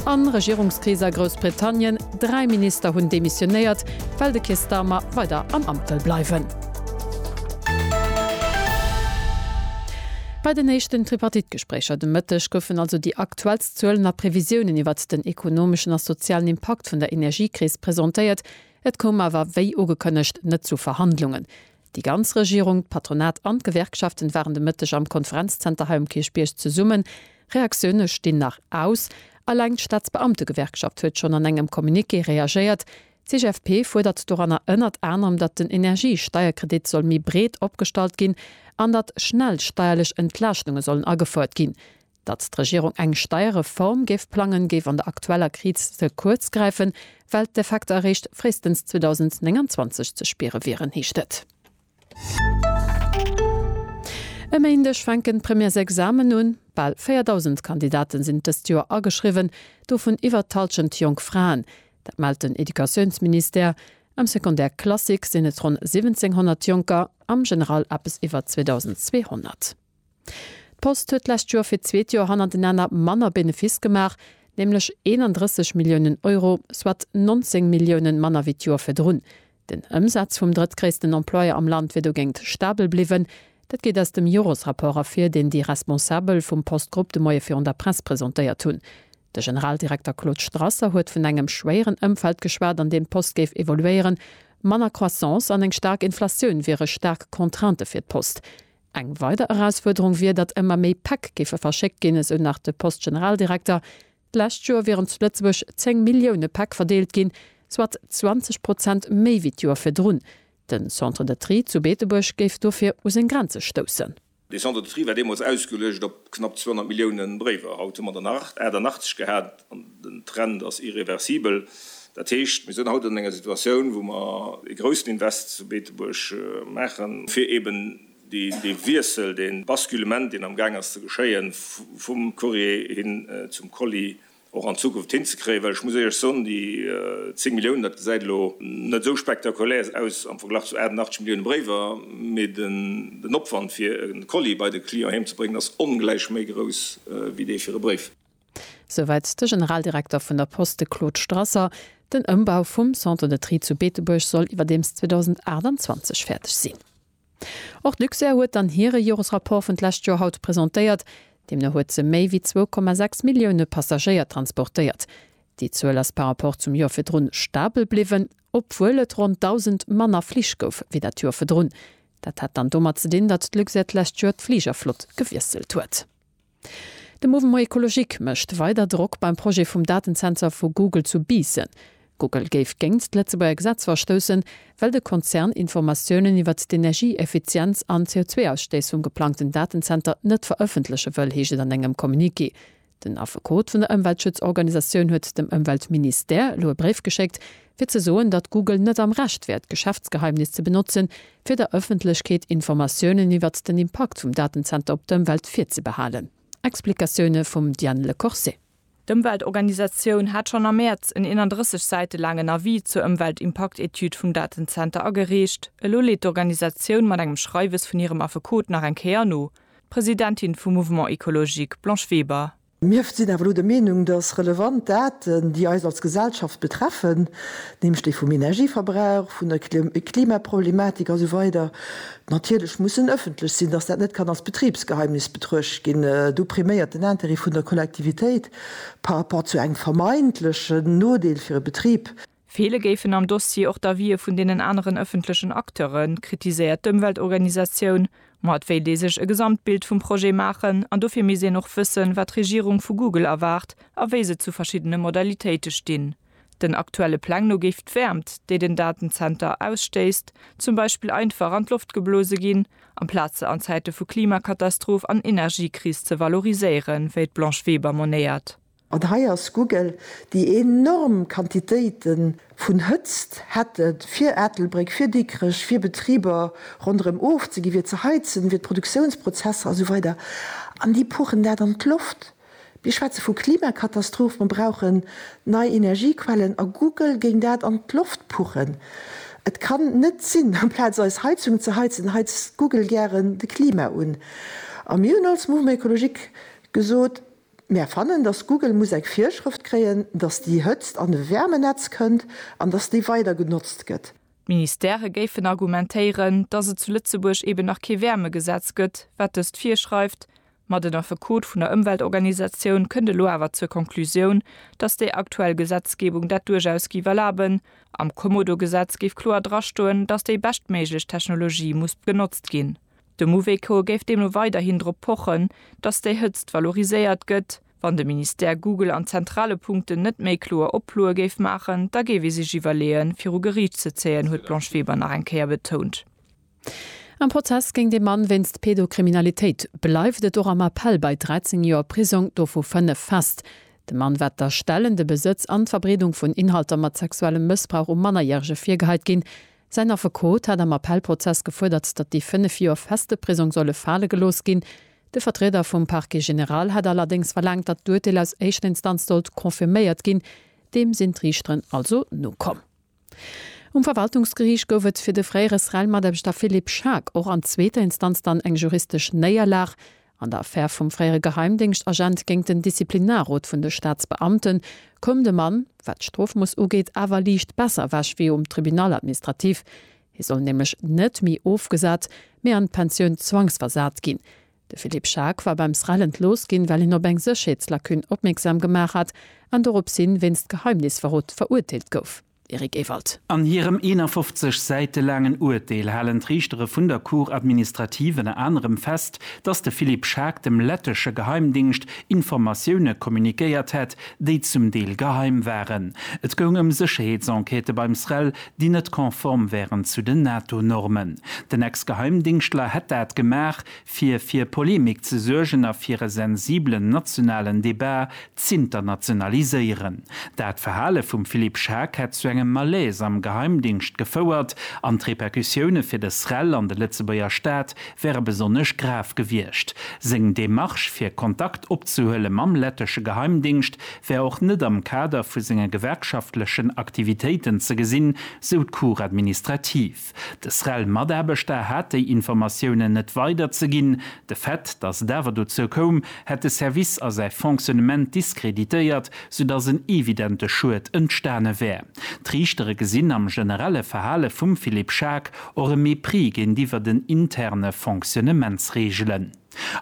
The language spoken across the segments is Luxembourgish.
A Regierungskris a Groussbritannien, Dräi Minister hunn demissionéiert, well de Keir Starmer weider am Amt wëll bleiwen. Bei den éischten Tripartite-Gespréicher de Mëtteg goufen also déi aktuellst Zuelen a Previsiounen iwwert den ekonomeschen a sozialen Impakt vun der Energiekris presentéiert. Et koum awer, wéi ugekënnegt, net zu Verhandlungen. Déi ganz Regierung, d'Patronat an d'Gewerkschaften waren de Mëtteg am Konferenzzenter hei um Kierchbierg zesummen. Reaktioune stinn nach aus. Alleng d'Staatsbeamtegewerkschaft huet schonn an engem Communiqué reagéiert. D'CGFP fuerdert doranner ënnert anerem, datt den Energiesteierkredit soll méi breet opgestallt ginn an datt schnell steierlech Entlaaschtunge sollen agefouert ginn. Datt d'Regierung eng Steierreform géif plangen, géif an der aktueller Kriz ze kuerz gräifen, well d'Effekter eréischt fréistens 2029 ze spiere wieren, heescht et. E Méindeg fänken d'Premièresexamen un. Bal 4.000 Kandidate sinn dëst Joer ageschriwwen, dovun iwwer d'Hallschent jonk Fraen. Dat mellt den Educatiounsministère. Am Secondaire classique sinn et ronn 1.700 Jonker, am General eppes iwwer 2.200. D'Post huet d'lescht Joer fir d'zweet Joer hannertenanner manner Benefiss gemaach, nämlech 31 Milliounen Euro, soit 19 Milliounen manner wéi d'Joer virdrun. Den Ëmsaz vum drëttgréissten Employeur am Land wier dogéint stabel bliwwen. Dat geet aus dem Jores-Rapport ervir, deen déi Responsabel vum Post-Grupp de Moie virun der Press presentéiert hunn. De Generaldirekter Claude Strasser huet vun engem schwéieren Ëmfeld geschwat, an deem d'Post géif evoluéieren. Manner Croissance an eng staark Inflatioun wiere staark Contraintë fir d'Post. Eng weider Erausfuerderung wier, datt ëmmer méi Päck géife verschéckt ginn, esou nach de Post-Generaldirekter. D'lescht Joer wieren zu Lëtzebuerg 10 Millioune Päck verdeelt ginn, soit 20 Prozent méi wéi d'Joer virdrun. Den Centre de Tri zu Beetebuerg géif dofir u seng Grenze stoussen. De Centre de Tri war deemools ausgeluecht op knapp 200 Millioune Bréiwer. Haut hu mer der nach 88 gehat. An den Trend ass irreversibel. Dat heescht, mir sinn haut an enger Situatioun, wou mer ee groussen Invest zu Beetebuerg maachen, fir eeben dee Wiessel, dee Basculement, deen am Gaang ass ze geschéien, vum Courrier hin zum Colis, och an Zukunft hinzekréien. Well ech muss Iech soen, déi 10 Milliounen, dat gesäit elo net esou spektakulär aus am Verglach zu 88 Millioune Bréiwer, mee den Opwand, fir e Colis bei de Client heemzebréngen, ass ongläich méi grouss wéi dee fir e Bréif. Souwäit de Generaldirekter vun der Post, de Claude Strasser. Den Ëmbau vum Centre de Tri zu Beetebuerg soll iwwerdeems 2028 fäerdeg sinn. Och d'Luxair huet dann hire Joresrapport vun d'lescht Joer haut presentéiert. Deemno huet se méi wéi 2,6 Millioune Passagéier transportéiert. Déi Zuel ass par Rapport zum Joer virdrun stabel bliwwen, obwuel et ronn 1.000 manner Flich gouf wéi dat Joer virdrun. Dat hat dann domat ze dinn, datt d'Luxair d'lescht Joer d'Fligerflott gewiesselt huet. De Mouvement Ecologique mécht weider Drock beim Projet vum Datensensor vu Google zu Biissen. Google géif géingt d'Lëtzebuerger Gesetz verstoussen, well de Konzern Informatiounen iwwert d'Energieeffizienz an d'CO2-Ausstëiss vum geplangten Datenzenter net verëffentleche wëll, heescht et an engem Communiqué. Den Affekot vun der Ëmweltschutzorganisatioun huet dem Ëmweltministère elo e Bréif geschéckt, fir ze soen, datt Google net am Recht wär, d'Geschäftsgeheimnis ze benotzen, fir der Ëffentlechkeet Informatiounen iwwert den Impakt vum Datenzenter op d'Ëmwelt virzebehalen. Explikatioune vum Diane Le Corset. D'Ëmweltorganisatioun hat schonn am Mäerz en 31 Säite laangen Avis zur Ëmweltimpaktetüd vum Datenzenter agereecht. Elo leet d'Organisatioun mat engem Schreiwes vun hirem Affekot nach eng Kéier no. D'Presidentin vum Mouvement Ecologique, Blanche Weber. Mir sinn awer elo der Meenung, dass relevant Daten, déi eis als Gesellschaft betreffen, nämlech déi vum Energieverbrauch, vun der Klimaproblematik a sou weider natierlech mussen ëffentlech sinn, dass dat net kann als Betribsgeheimnis betruecht ginn. Do priméiert den Intérêt vun der Kollektivitéit par rapport zu engem vermeintlechen Nodeel fir e Betrib. Feele géifen am Dossier och d'Avië vun deenen aneren ëffentlechen Acteuren, kritiséiert d'Ëmweltorganisatioun. Ma et wéilt ee sech e Gesamtbild vum Projet maachen an dofir misst een och wëssen, wat d'Regierung vu Google erwaart a wéi se zu verschiddene Modalitéite stinn. Den aktuelle Pläng no géif d'Wäermt, déi den Datenzenter ausstéisst, zum Beispill einfach an d'Loft geblose ginn, amplaz se an Zäite vu Klimakatastroph an Energiekris ze valoriséieren, wéi d'Blanche Weber monéiert. An hei ass Google, déi enorm Quantitéite vun Hëtzt hätte fir Ettelbréck, fir Dikrech, fir Betriber ronderëm ofzegi fir ze heizen, fir d'Produktiounsprozesser a sou weider, an déi puchen dat an d'Loft. Mir schwätze vu Klimakatastroph, mer brauche nei Energiequellen a Google géing dat an d'Loft puchen. Et kann net sinn, amplaz eis Heizung ze heizen, heizt Google gären de Klima un. A mir hunn als Mouvement écologique gesot, Mär fannen, dass Google muss eng Virschrëft kréien, dass déi Hëtzt an de Wäermenetz kënnt an dass déi weider genotzt gëtt. D'Ministere géifen argumentéieren, dass et zu Lëtzebuerg eben nach kee Wäermegesetz gëtt, wat dëst virschreift, ma den Affekot vun der Ëmweltorganisatioun kënnt elo awer zur Konklusioun, dass déi aktuell Gesetzgebung dat duerchaus géif erlaben. Am Kommodo-Gesetz géif kloer drastoen, dass déi beschtméiglech Technologie muss genotzt ginn. De Mouvéco géif deemno weiderhin drop pochen, datt déi Hëtzt valoriséiert gëtt. Wann de Ministère Google an zentrale Punkten net méi kloer Oploe géif maachen, da géif ee sech iwwerleeën, fir u Geriicht ze zéien, huet d'Blanche Weber nach eng Kéier betount. Am Prozess géint ee Mann wéinst Pedokriminalitéit bleift et och am Appell bei 13 Joer Prisong, dovu 5 fest. Dem Mann war d'Erstellen, de Besëtz an d'Verbreedung vun Inhalter mat sexuellem Mëssbrauch u Mannerjärege virgeheit ginn. Säin Affekot hat am Appellprozess gefuerdert, datt déi fënnef Joer feste Prisong solle fale gelooss ginn. De Vertrieder vum Parquet général hat allerdéngs verlaangt, datt d'Urteel aus éischter Instanz sollt confirméiert ginn. Deem sinn d'Riichteren also nokomm. Um Verwaltungsgeriicht gouf et fir de fréiere SREL-Mataarbechter Philippe Schaack och an zweeter Instanz dann eng juristesch Néierlag. An der Affär vum fréiere Geheimdéngschtagent géint den Disziplinarrot vun de Staatsbeamten koum de Mann, wat d'Strofmooss ugeet, awer liicht besser ewech wéi um Tribunal administratif. Hie soll nämlech net méi ofgesat, mee an d'Pensioun zwangsversat ginn. De Philippe Schaack war beim SREL entlooss ginn, well hien op eng Sécherheetslacune opmierksam gemaach hat an doropshin wéinst Geheimnisverrot verurteelt gouf. Eric Ewald. An hirem 51 Säite laangen Urteel halen d'Riichtere vun der Cour administrative ënner anerem fest, datt de Philippe Schaack dem lettesche Geheimdingscht Informatioune communiquéiert hätt, déi zum Deel geheim waren. Et goung ëm Sécherheetsenquêtë beim SREL, déi net konform wären zu den NATO-Normen. Den Ex-Geheimdingschtler hätt dat gemaach, fir fir Polemik ze suergen a fir e sensiblen nationalen Debat z'internationaliséieren. Dat Verhale vum Philippe Schaack hätt zu engem Malaise am Geheimdingscht gefouert an d'Repercussioune fir de SREL an de Lëtzebuerger Staat wäre besonnesch grav gewiescht. Seng Demarche fir Kontakt opzehuele mam lettesche Geheimdingscht wär och net am Kader vu senge gewerkschaftlechen Aktivitéiten ze gesinn, sou d'Cour administrative. De SREL-Mataarbechter hat déi Informatiounen net weiderzeginn. De Fait, datt et awer dozou koum, hätt de Service a säi Fonctionnement diskreditéiert, soudatt en evidente Schued entstane wär. D'Riichtere gesinn am generelle Verhale vum Philippe Schaack och e Mépris géintiwwer den interne Fonctionnementsreegelen.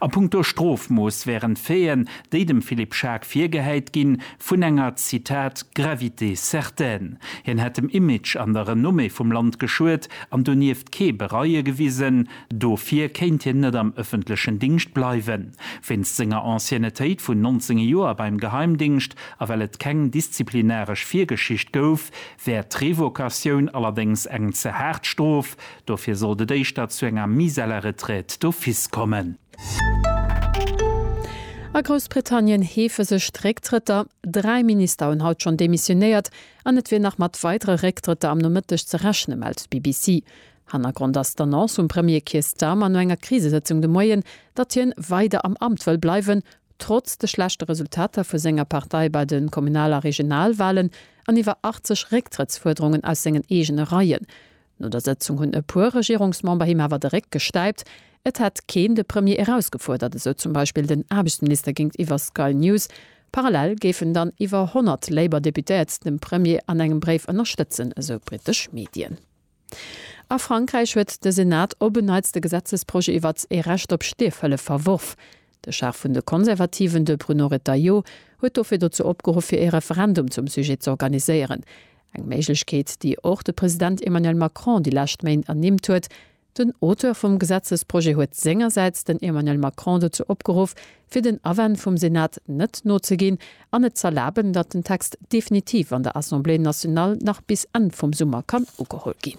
A punkto Strofmooss wären d'Faiten, déi dem Philippe Schaack virgehäit ginn, vun enger, Zitat, gravité certaine. Hien hätt dem Image an der Renommée vum Land geschuet an donieft kee Bereue gewisen. Dofir kéint hien net am ëffentlechen Dingscht bleiwen. Wéinst senger Anciennetéit vun 19 Joer beim Geheimdingscht a well et keng disziplinaresch Virgeschicht gouf, wär d'Revocatioun allerdéngs eng ze haart Strof, Dofir sollt et éischter zu enger mise à la retraite d'office kommen. A Groussbritannien heefe sech d'Récktrëtter. Dräi Minister hunn haut schonn demissionéiert an et wier nach mat weidere Récktrëtter am Nomëtteg ze rechne mellt d'BBC. Hannergrond ass d'Annonce vum Premier Keir Starmer no enger Krisesëtzung de Moien, datt hien weider am Amt wëll bleiwen, trotz de schlechte Resultater vu senger Partei bei de Kommunal a Regionalwalen an iwwer 80 Récktrëttsfuerderungen aus sengen eegene Reien. No der Sëtzung hunn e puer Regierungsmember him awer de Réck gestäipt. Et hätt keen de Premier erausgefuerdert, esou zum Beispill den Aarbechtsminister géintiwwer Sky News. Parallel géifen dann iwwer 100 Labour-Deputéiert dem Premier an engem Bréif ënnerstëtzen, esou britesch Medien. A Frankräich huet de Senat op en Neits de Gesetzesprojet iwwert ee Recht op Stierfhëllef verworf. De Chef vun de Konservativen, de Bruno Retailleau, huet dofir dozou opgeruff, fir ee Referendum zum Sujet z'organiséieren. Eng Méiglechkeet, déi och de President Emmanuel Macron déi lescht Méint ernimmt huet. Den Auteur vum Gesetzesprojet huet sengersäits den Emmanuel Macron dozou opgeruff, fir den Awänn vum Senat net nozeginn an et z'erlaben, datt den Text definitiv an der Assemblée nationale nach bis Enn vum Summer kann ugeholl ginn.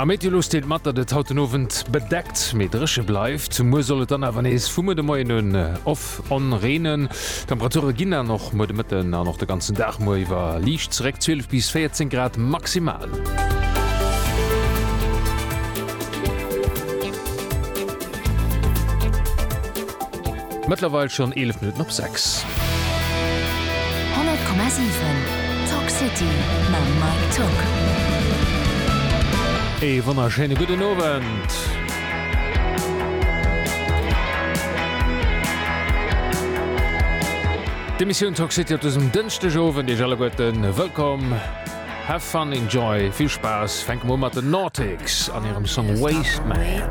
Am Meteolux deelt mat, datt et haut den Owend bedeckt, mee dréche bleift. Muer soll et dann awer nees vum Muer de Moien un off on reenen. D'Temperature ginn dann och muer de Mëtten an och de ganzen Dag muer iwwer liicht zeréck, 12 bis 14 Grad maximal. Mëttlerweil schonn 11 Minutten op 6. 100,7 Talk City mam Mike Tuck. Ee wonnerschéine gudden Owend. D'Emissioun Talk City op dësem Dënschdegowend. Iech alleguerten wëllkomm. Have fun, enjoy, vill Spaass. Fänke mer u mat den Nautix an hirem Song Waste Man.